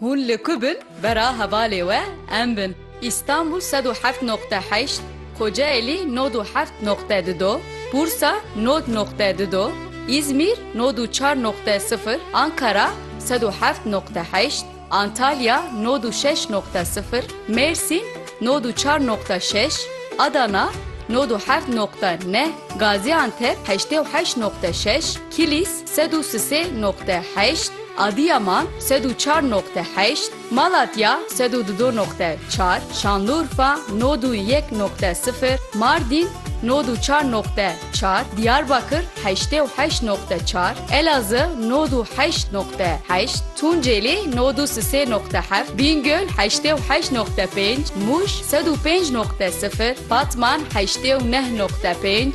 Hûn li ku bin bera hevalê we em bin. Îstanbul sed û heft noqte heşt, Kocaelî nod û heft noqte di do, Bursa nod noqte di do, Îzmîr nod û çar noqte sifir, Ankara sed û heft noqte heşt, Antalya nod û şeş noqte sifir, Mêrsîn nod û çar noqte şeş, Adana nod û heft noqte neh, Gazîantep heştê û heşt noqte şeş, Kilîs Sed û sisê noqte heşt, Adîyaman, sed û çar noqte heşt, Malatya, sed û dido noqte çar, Şanlurfa, nod û yek noqte sifir, Mardîn, nod û çar noqte çar, Dîyarbakir, heştê û heşt noqte çar, Elazığ, nod û heşt noqte heşt, Tuncêlî, nod û sisê noqte heft, Bîngöl, heştê û heşt noqte pênc, Mûş, sed û pênc noqte sifir, Batman, heştê û neh noqte pênc,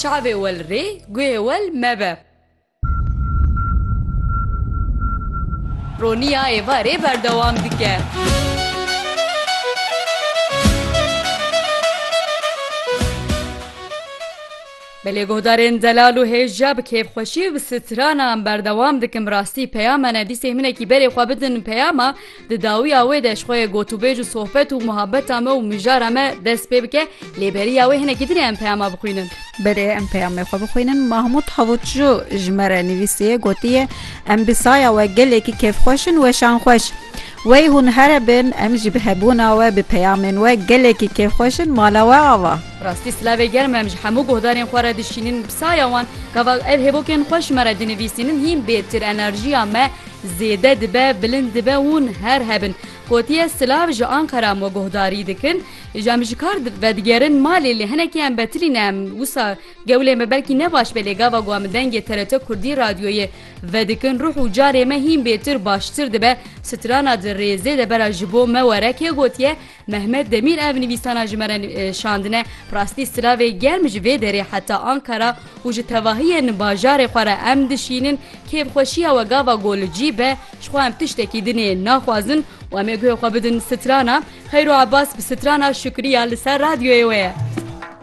Çavê wel rê, guhê wel mebe. Roniya êvarê berdewam dike. Belê guhdarên zelal û hêja bi kêfxweşî û bi stranan berdewam dikim rastî peyama ne dîsê hinekî berê xwe bidin peyama Di dawiya wê de ji xwe yê gotûbêj û sohbet û muhabbeta me û mijara me dest pê bike, lê beriya wê hinekî din e em peyama bixwînin. Berê em peyamê xwe bixwînin, Mahmûd Havûtçû ji me re nivîsiye, gotiye, Em bi saya we gelekî kêfxweş in, weşan xweş. Wey hûn here bin, em jî bi hebûna we, bi peyamên we gelekî kêfxweş in, mala we ava. Rastî silavê germ em ji hemû guhdarên xwe re dişînin, bi saya wan, gava ev hêvokên xweş me re dinivîsînin hîn bê tir enerjiya me, Zêde dibe, bilind dibe hûn her hebin. Gotiye silav ji Anqera me guhdarî dikin. Ji em ji kar vedigerin malê lê hinekî em betilî ne em wisa gewlê me belkî ne baş be lê gava ku em dengê TRT Kurdî radyoyê vedikin ruh û carê me hîn bêtir baştir dibe. Strana di rêzê de bera ji bo me were kê gotiye Mehmet Demîr ev nivîsana ji me re şandine, bi rastî silavê germ ji vê derê heta Ankara û ji tevahiyên bajarê xwe re em dişînin, kêfxweşiya we gava ku li cî be, ji xwe em tiştekî dinê naxwazin û em ê guhê xwe bidin strana, Xeyro Abbas bi strana Şukriya li ser radyoyê wê ye.